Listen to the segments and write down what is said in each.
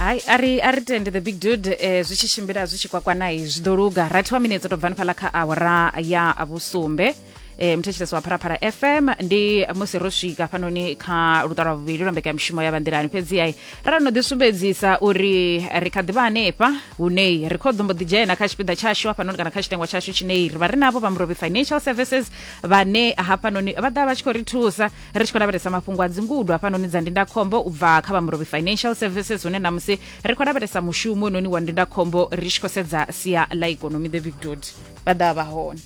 hai a ri a ri tende the big dude eh, zwi tshi tshimbila zwi tshi kwakwanai zwi ḓo luga rathi wa minetse to bvani fhala kha awara ya vhusumbe eh, muthetshelesi wa phalaphala fm ndi musi ro swika fhanoni kha luṱa lwa vhuvhili lwa mbekanyamushumo ya vhanḓilani fhedzi ai ra no ḓisumbedzisa uri ri kha ḓivha hanefha hunei ri kho ḓombo ḓi dzhena kha tshipiḓa tshashu hafhanoni kana kha tshitengwa tshashu tshinei ri vha ri navho vha murobi financial services vhane hafhanoni vha ḓa vha tshi khou ri thusa ri tshi khou lavhelesa mafhungo a dzingudo hafhanoni dza ndindakhombo u bva kha vha murobi financial services hune namusi ri khou lavhelesa mushumo noni wa ndindakhombo ri tshi khou sedza sia ḽa ikonomi the big dod vha ḓa vha hone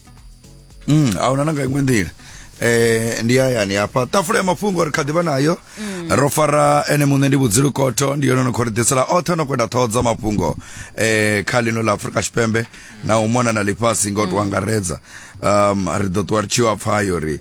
mm, a huna na nga iṅwe nḓila eh ndi hayani hafha tafula ya mafhungo ri kha ḓivha nayo mm. ro fara ene muṋe ndi vhudzilu kotho ndi yone no khou ri ḓisela oṱhe no kwenda ṱhoho dza mafhungo eh kha ḽino ḽa afurika tshipembe na u mona na ḽifhasi nga u tou mm. angaredza um ri ḓo ṱuwa ri tshi yo pfha yo ri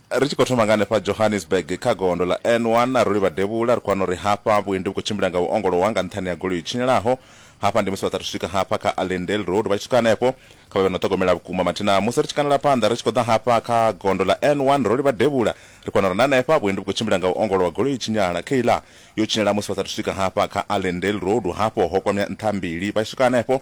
Ri tshi khou thoma nga hanefha Johannesburg kha gondo ḽa N1, a ro livha devhula, ri khou wana uri hafha vhuendi vhu khou tshimbila nga u ongolowa nga nṱhani ha goloi i tshinyalaho. Hafha ndi musi vha sa athu swika hafha kha Allendale Road, vha tshi swika hanefho, kha vha vhe na u ṱhogomela vhukuma. Mathina musi ri tshi kandela phanḓa ri tshi khou ḓa hafha kha gondo ḽa N1, ro livha devhula, ri khou wana uri na hanefha vhuendi vhu khou tshimbila nga u ongolowa, goloi i tshinyala. Kayla yo tshinyala musi vha sa athu swika hafha kha Allendale Road, hafho ho kwamea nṱha mbili. Vha tshi swika hanefho,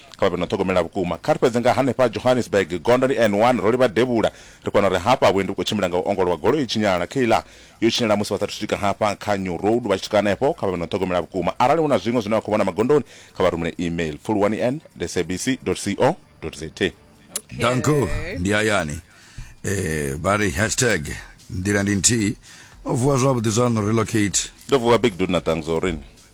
Kha vha vhe no ṱhogomela vhukuma. Kha ri fhedze nga hanefha Johannesburg, gondo ndi N one, ro livha devhula. Ri kona uri hafha vhuendi vhu khou tshimbila nga u ongolowa, goloi i tshinyala. Kayla, Yo tshinyala musi vha sa athu swika hafha kha New Road, vha tshi swika hanefho. Kha vha vhe no ṱhogomela vhukuma. Arali hu na zwiṅwe zwine vha khou vhona magondoni, kha vha rumele email, pfuluwani en the sabc dot co dot za. Danko, Ndi hayani. Ee, vha ri hashtag nḓila ndi nthihi. No vuwa zwavhuḓi zwaṋu, relocate. Ndo vuwa Big Dude na Thanks, o ri.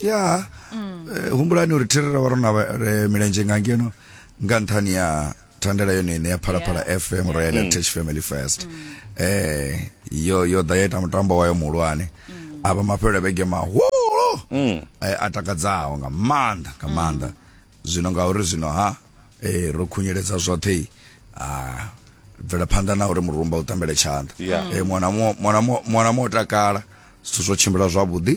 ya mm. eh, humbulani uri thirira wa rona eh, milenzhe nga ngeno nga nṱhani ya thandela yone ine ya phalaphala yeah. fm yeah. royal heritage mm. family first mm. eh, yo yo ḓa ya ita mutambo wayo muhulwane mm. a vha mafhelo vhege mahulu mm. eh, a takadzaho nga maanḓa nga mm. maanḓa mm. zwino ngauri zwino ha eh, ro khunyeledza zwoṱhe ah, bvela phanḓa na uri murumba u tambele tshanḓa yeah. eh, mwana mwana mwana mo takala zwithu zwo tshimbila zwavhuḓi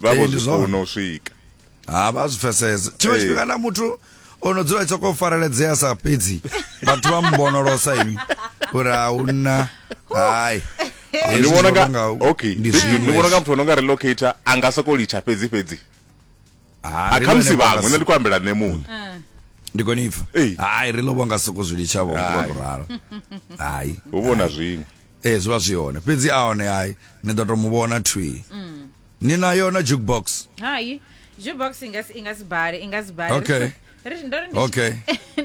vha vho zwifuna u swika ha vha zwi pfesesa tshiṅwe tshifhinga na muthu o no dzula tsoko fareledzea sa fhedzi vhathu vha mbonolosa ini uri a hu nna hayi ndi vhona nga okay ndi vhona nga muthu ono nga relocator a nga soko litsha fhedzi fhedzi a kha musi vhaṅwe nṋe ndi khou ambela nṋe muṋe ah. ndi kone ipfa hayi ri lovha nga soko zwi litsha vho ngo ralo hayi hu vhona zwiṅwe ee zwi vha zwi hone fhedzi a hone hai ni ḓo to mu vhona thwi mm. ni na yona jukebox hai jukebox i nga si i nga si bale i nga si bale okay okay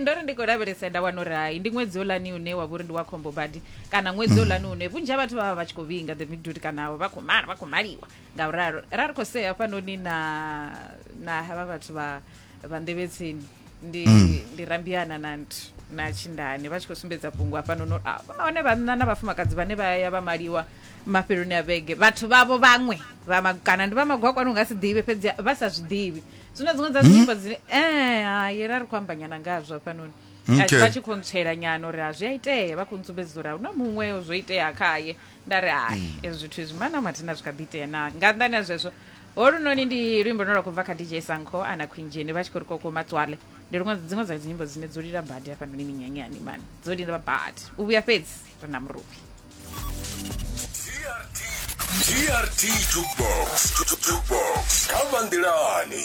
ndo ri ndi khou lavhelesa nda wana uri hai ndi ṅwedzi olani une wa vhori ndi wa khombo badi kana ṅwedzi mm. olani une vhunzhi ha vhathu vha vha vha tshi khou vhinga the midut kana vha khou mala vha khou maliwa nga u ralo ra ri khou sea hafhanoni na na havha vhathu vha vhandevhetsini ndi mm. ndi rambiana na na tshindani vha tshi khou sumbedza fhungo hafhano no ah, hone vhanna na vhafumakadzi vhane vha ya vha maliwa mafheloni a vhege vhathu vhavho vhaṅwe kana ndi vha magwakwani unga si ḓivhe fhedzi vha sa zwi ḓivhi zwino dziṅwe dza dzinyimbo mm. dzine e eh, hayi ra ri khou ambanyana ngazwo hafhanoni vha tshi khou ntswela nyana uri a zwi a itea vha khou ntsumbedzisa uri a huna muṅwe zwo itea khaye nda ri hai mm. ezwi zwithu izwi mana mathina zwi kha ḓi itea na nga nnḓani ha zwezwo holunoni ndi luimbo no lwa khou bva kha dj sanko ana khwinzheni vha tshi khou ri koko matswale ndi luṅwe dziṅwe dza dzinyimbo dzine dzo lila badi hafhanoni minyanyani mani dzo lila badi u vhuya fhedzi ri na muruvhi grt jukebox jukebox kha vanḓilani